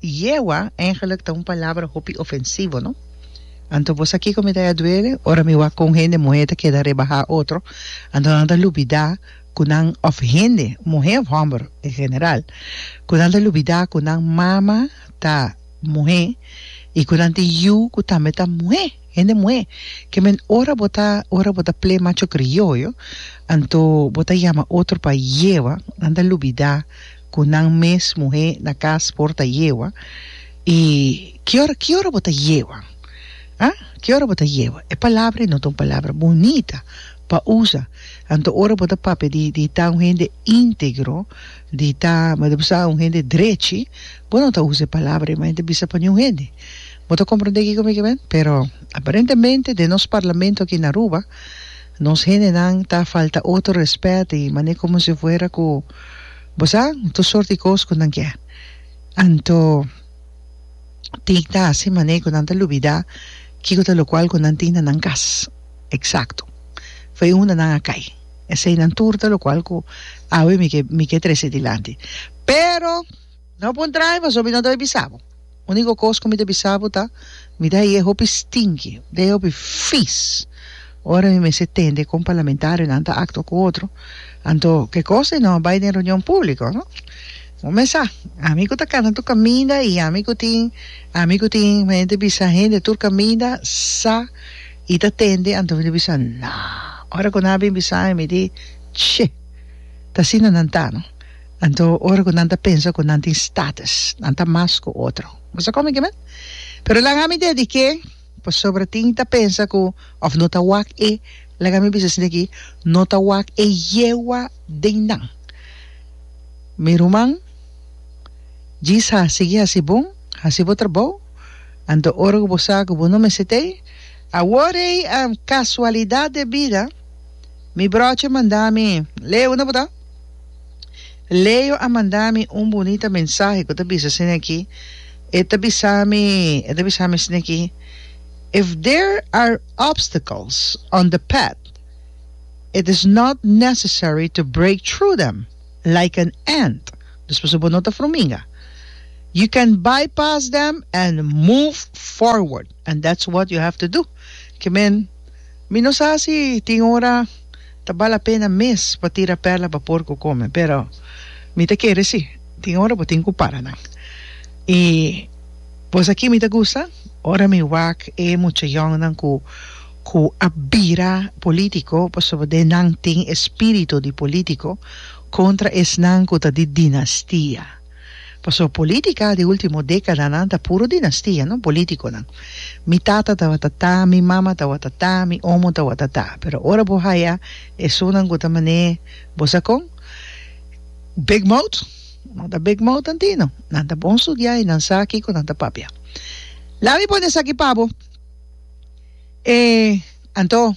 Yehua eigenlijk ta un palabra hopi ofensivo, no? Anto bo sa kiko mi ta ya duele ora mi wak ku un hende muhé ta keda rebahá otro? Anto nan ta lubidá ku nan, òf hende, muhé òf hòmber en general, ku nan ta lubidá ku nan mama ta muhé i ku nan tin yu ku tambe ta muhé, hende muhé? Kèmen ora bo ta ora bo ta ple macho krioyo, anto bo ta yama otro pa yehua, nan ta lubidá cu nan mes muhe na cas por ta yewa y ki ora ki ora bo ta yewa ah ki ora bo ta yewa e palabra no ta un palabra bunita pa usa anto ora bo ta papia di di ta un hende integro di ta mada bo sa un hende drechi bo no ta usa e palabra mas e ta bisa pa niun hende bo ta comprende kico mi ke ben pero aparentemente den nos parlamento aki na Aruba nos hendenan ta falta otro respet y manera como si fuera cu. Bo sa tur sort di kos ku nan ke. Anto tin ta hasi mane ku nan ta lubidá kiko ta lokual ku nan tin na nan kas. Eksakto. Fo e unda nan a kai. Esei nan tur ta lokual ku awe mi ke mi ke trese dilanti. Pero. No pon traha pasobra mi no ta bai bisa bo. Único cos cu mi ta bisa bo ta, mi ta heye hopi stinky, mi ta heye hopi vies. Ora mi mester tende con parlamentarionan ta acto cu otro, anto ke cos den no bai den reunion publico, no? Bo mes sa, ami cu ta cana tur caminda y ami cu tin, ami cu tin, mi ta bisa hende tur caminda sa y ta tende, anto mi ta bisa, nah. Ora cu nan a bin bisa mi, mi di, che, ta asina nan ta, no? Anto ora ku nan ta pensa ku nan tin status, nan ta mas ku otro. Bo sa komo ke men? Pero laga mi degi ke, pasobra tin ta pensa ku òf no ta wak e, laga mi bisa esei aki, no ta wak e yewa den nan. Mi ruman, djis ha, sigui hasi bon, hasi bo trabou, anto ora ku bo sa ku bo no mester tei. Awor ei, kasualidat de bida, mi bròche manda mi, Leo, unda bo ta? Leo a manda mi un bunita mensahe cu ta bisa asina aki, e ta bisa mi, e ta bisa mi asina aki, If there are obstacles on the path, it is not necessary to break through them like an ant, dus pasobra bo no ta fruminga. You can bypass them and move forward, and that's what you have to do. Ke men, mi no sa si tin ora. Ta bal a pena mes pa tira perla pa porku kome, pero mi ta kere si. Tin ora bo tin ku para nan. I bos aki mi ta gusta ora mi wak e mucha yòngnan ku ku a bira polítiko pasobra nan tin e spiritu di polítiko kontra esnan ku ta di dinastia. Paso politica di ultimo decadanan ta puro dinastia, no politiconan. Mi tata tabata ta, mi mama tabata ta, mi omo tabata ta. Pero ora bo haya esonan cu ta mane bo sa con? Big mouth? No ta big mouth anti, no. Nan ta bon studia y nan sa kico nan ta papia. Lami pone esaki pa bo. E anto.